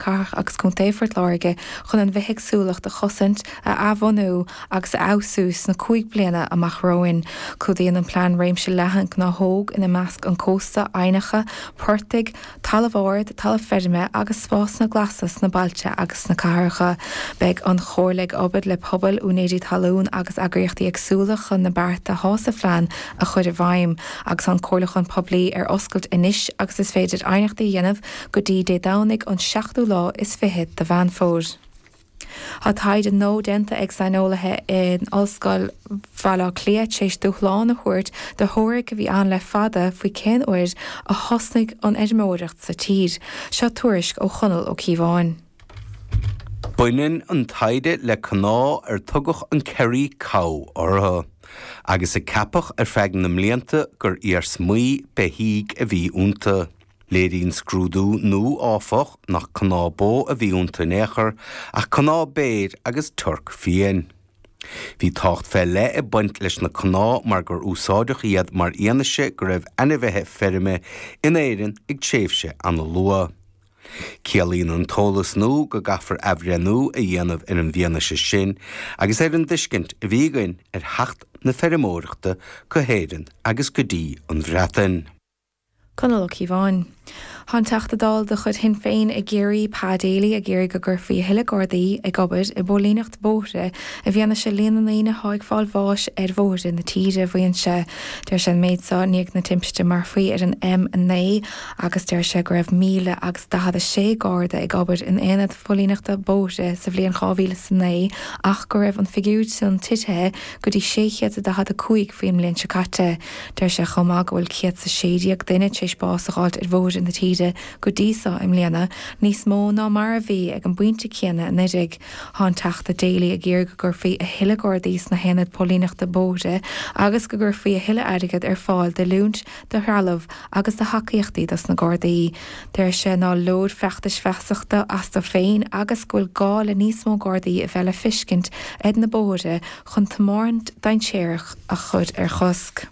Cathrach agus Contae Phort Láirge chun an bhithéagsúlacht a chosaint, a athbhunú agus a fheabhsú sna cúig bliana amach romhainn. Clúdaíonn an plean réimse leathan gnáthóg, ina measc an cósta, aibhneacha, portaigh, talamh ard, talamh feirme agus spásanna glasa sna bailte agus sna cathracha. Beidh an Chomhairle ag obair le pobail, úinéirí talún agus eagraíochtaí eagsúla chun na bearta thá sa phlean a chur i bhfeidhm. Tá an comhairliúchán poiblí ar oscailt anois agus is féidir aighneachtaí a dhéanamh go dtí Dé Domhnaigh an seachtú lá is fiche de Mheán Fómhair. Tá taighde nua déanta ag saineolaithe in Ollscoil Bhaile Átha Cliath t'éis dúshlán a thabhairt do theoiric a bhí ann le fada faoi cén uair a thosnaigh an fheirmeoireacht sa tír. Seo tuairisc ó Chonall Ó Ciabháin. Baineann an taighde le cnámha ar tugadh an Kerry Cow orthu, agus a ceapadh ar feadh na mblianta gur iarsmaí beithígh a bhí iontu. Léiríonn scrúdú nua, áfach, nach cnámha bó a bhí iontu in aon chor, ach cnámha béir agus toirc fiáin. Bhí tábhacht fé leith ag baint leis na cnámha mar gur úsáideadh iad mar fhianaise go raibh ainmhithe feirme in Éirinn ag tréimhse an-luath. Ciallaíonn an t-eolas nua go gcaithfear athbhreithniú a dhéanamh ar an bhfianaise sin agus ar an dtuiscint a bhí againn ar theacht na feirmeoireachta go hÉirinn agus go dtí an Bhreatain. Conall Ó Ciabháin. Thá an Teachta Dála de chuid Shinn Féin i gCiarraí, Pa Daly, ag iarraidh go gcuirfí a thuilleadh Gardaí ag obair i bpóilíneacht bóithre i bhfianaise líon na ndaoine atá ag fáil bháis ar bhóithre na tíre. Mhaígh sé, deir sé an méid so i ndiaidh na timpiste marfaí ar an M9 agus deir sé go raibh míle agus daichead a sé Garda ag obair in aonad phóilíneachta bóithre sa bhliain dhá mhíle is a naoi ach go raibh an figiúr san titithe go dtí sé chéad is a daichead a cúig faoin mbliain seo caite. Deir sé chomh maith go bhfuil 116 duine tar éis bás a dh'fháilt ar bhóithre na tíre go dtí so i mbliana, níos mó ná mar a bhí ag an bpointe céanna anuiridh. Thá an Teachta Daly ag iarraidh go gcuirfí a thuilleadh Gardaí sna haonaid póilíneachta bóithre agus go gcuirfí a thuilleadh airgid ar fáil d'oiliúint, do threallamh agus do thacaíochtaí dos na Gardaí. Deir sé ná leor feachtais feasachta astu féin agus go bhfuil gá le níos mó Gardaí a bheith le fiscint ar na bóithre chun tiomáint dainséarach a chur ar chosc.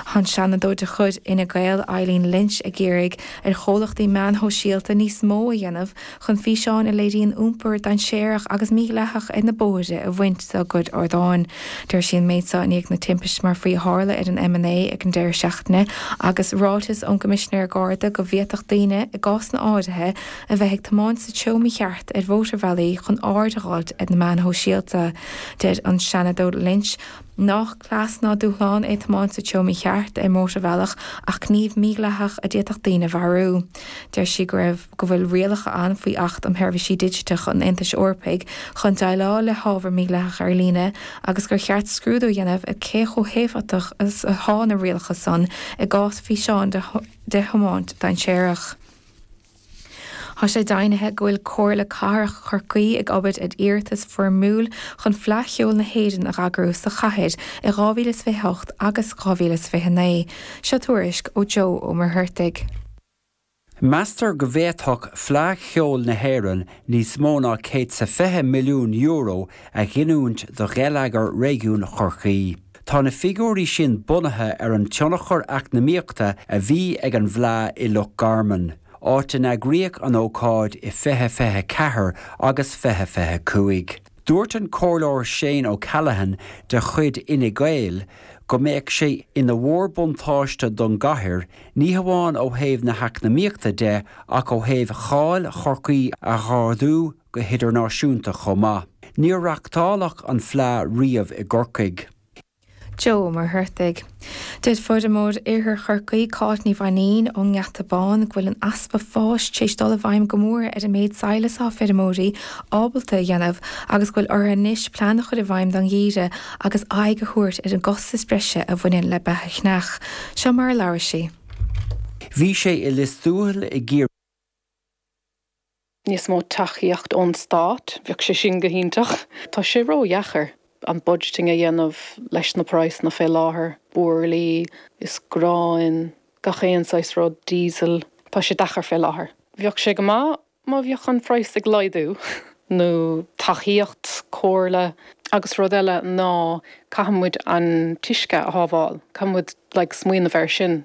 Thá an Seanadóir de chuid Fhine Gael Eileen Lynch ag iarraidh ar chomhlachtaí meáin shóisialta níos mó a dhéanamh chun físeáin a léiríonn iompar dainséarach agus mídhleathach ar na bóithre a bhaint dá gcuid ardáin. Deir sí an méid so i ndiaidh na timpiste marfaí a tharla ar an M9 ag an deireadh seachtaine agus ráiteas ón gCoimisinéir Garda go bhféadfadh daoine, i gcásanna áirithe, A bheith ag tiomáint sa treo mícheart ar mhótarbhealaí chun aird a dh'fháilt ar na meáin sóisialta. Deir an Seanadóir Lynch nách cleas ná dúshlán é tiomáint sa treo mícheart ar mhótarbhealach ach gníomh mídhleathach a d'fhéadfadh daoine a mharú. Deir sí go raibh go bhfuil rialacha ann faoi Acht um Sheirbhísí Digiteacha an Aontais Eorpaigh chun déileáil le hábhar mídhleathach ar líne agus gur cheart scrúdú a dhéanamh ar cé chomh héifeachtach is atá na rialacha san i gcás físeán de thiomáint dainséarach. Tá sé deimhnithe go bhfuil Comhairle Cathrach Chorcaí ag obair ar iarratas foirmiúil chun Fleadh Cheoil na hÉireann a eagrú sa chathair i 2028 agus 2029. Seo tuairisc ó Joe Ó Muircheartaigh. Meastar go bhféadfadh Fleadh Cheoil na hÉireann níos mó ná céad is €20 milliún a ghiniúint do gheilleagar réigiún Chorcaí. Tá na figiúirí sin bunaithe ar an tionchar eacnamaíochta a bhí ag an bhFleadh i Loch Garman, áit a n-eagraíodh an ócáid i 2024 agus 2025. Dúirt an Comhairleoir Shane O'Callaghan de chuid Fhine Gael go mbeadh sé ina mhórbhuntáiste don gcathair, ní hamháin ó thaobh na heacnamaíochta de ach ó thaobh cháil Chorcaí a ardú go hidirnáisiúnta chomh maith. Níor reachtáladh an Fleadh riamh i gCorcaigh. Joe Ó Muircheartaigh. Deir feirmeoir in Iarthar Chorcaí, Cáit Ní Mhainín ón nGeata Bán, go bhfuil an easpa fáis tar éis dul i bhfeidhm go mór ar an méid sadhlas atá feirmeoirí ábalta a dhéanamh agus go bhfuil orthu anois plean a chur i bhfeidhm don gheimhreadh agus aghaidh a thabhairt ar an gcostas breise a bhaineann le beatha a cheannach. Seo mar a labhair sí. Bhí sé i Lios Tuathail i gCiarraí. níos mó tacaíocht ón stát, bheadh sé sin go hiontach. Tá sé ró-dheacair an budgeting a dhéanamh leis na praghsanna fé láthair, buirlí is gráin, gach aon saghas rud, diesel, tá sé deacair fé láthair. Bheadh sé go maith má bhíonn an praghas ag laghdú nó tacaíocht, comhairle agus rud eile ná caithfidh muid an t-uisce a shábháil, caithfidh muid like smaoineamh ar sin.